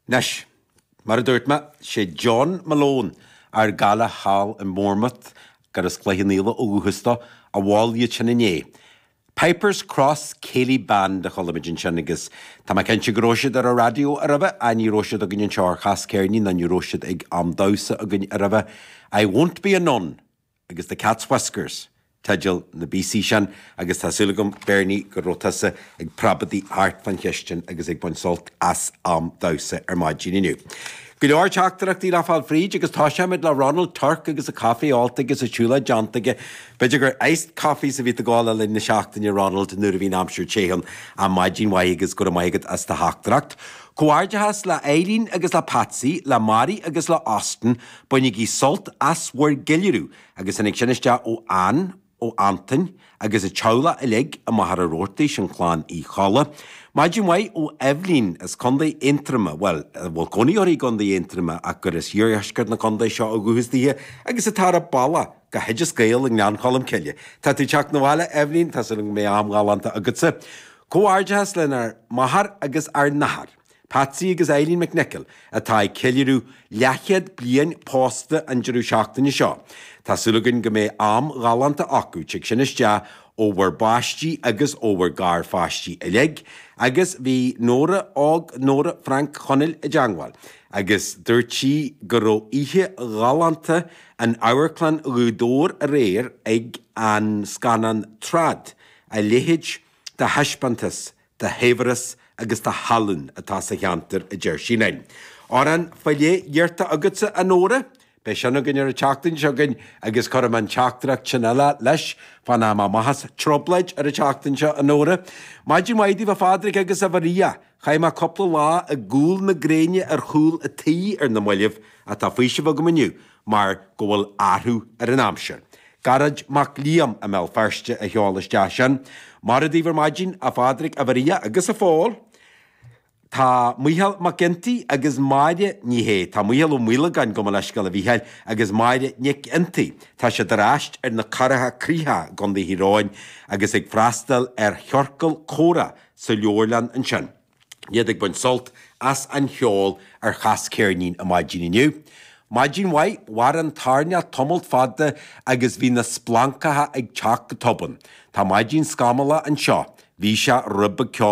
Anois, mar a dúirt mé, sé John Malone, ár gcara thall i mBournemouth, gurb as Cloich an Fhaola ó dhúchas dó, a mhol iad sin inné. Pipers Cross Céilí Band a chuala muid ansin agus tá mé cinnte go raibh siad ar an raidió a raibh a, ní raibh siad againn anseo ar Chas Ceirnín ná ní raibh siad ag am damhsa againn a raibh a I won't be a nun, agus The Cat's Whiskers teidil na bpíosaí sin agus tá súil agam, Beirní, go raibh tusa ag preabadaigh thart fán chistin agus ag baint sult as am damhsa ar maidin inniu. Go leor teachtaireachtaí le gabháil fríd agus toiseoidh muid le Ronald Tuirc agus a chaife ólta agus a shiúlóid déanta aige. B'fhéidir gur iced coffees a bhí tú ag ól le linn na seachtaine, a Ronald, nuair a bhí an aimsir te ann. Á, maidin mhaith agus go raibh maith agat as do theachtaireacht. Comhghairdeachas le Eileen agus le Patsy, le Mary agus le Austin, Bainigí sult as bhur gceiliúradh agus tháinig sin isteach ó Anne, ó Antain agus an teaghlach uilig i Machaire Rabhartaigh, sin clann Uí Cholla. Maidin mhaith ó Eibhlín as Contae Aontroma, bhuel, a bhfuil cónaí uirthi i gContae Aontroma ach gur as iardheisceart na contae seo ó dhúchas daoithe agus atá ar a bealach go hOideas Gael i nGleann Cholm Cille. Tá tú ag teacht na bhaile, a Eibhlín, tá súil agam go mbeidh am ghalánta agatsa. Comhghairdeachas lenár máthair agus ár n-athair. Patsy agus Eileen McNicholl, atá ag ceiliúradh leathchéad bliain pósta an deireadh seachtaine seo. Tá súil againn go mbeidh am ghalánta acu, tig sin isteach ó bhur bpáistí agus ó bhur ngarpháistí uilig, agus bhí Nóra, á, Nóra Frank Chonaill i dteangmháil agus dúirt sí go raibh oíche ghalánta in Amharclann Ghaoth Dobhair aréir ag an scannán Trad, a leithéid de thaispeántas de shaibhreas agus de thallann atá sa cheantar, a deir sí linn. Amhrán féile iarrtha agatsa, a Nóra? Beidh sin againn ar an tseachtain seo chugainn agus cuir an teachtaireacht sin eile leis fána mbíonn muid ag trioblóid ar an tseachtain seo, a Nóra? Maidin mhaith daoibh, a Phádraig agus a Mharia. Chaith mé cúpla lá i gcúl na gréine ar chúl an tí ar na mallaibh, ach tá faoiseamh agam inniu. mar go bhfuil athrú ar an aimsir. Gearóid Mac Liam i mBéal Feirste a sheol isteach sin. Mora daoibh ar maidin, a Phádraig, a Mharia agus a Phóil. Tá Micheál McGinty agus Máire Ní Shé, tá Micheál Ó Maolagáin, gabh mo leithscéal a Mhicheáil, agus Máire Nic Fhionntaigh, tá siad ar ais ar na Corra Críochacha i gContae Thír Eoghain agus ag freastal ar chiorcal comhrá sa leabharlann ansin. iad ag baint sult as an cheol ar Chas Ceirnín ar maidin inniu. Maidin mhaith, mhair an toirneach tamalt fada agus bhí na splancacha ag teacht go tobann. Tá maidin scamalla anseo. Bhí sé róbheag ceo.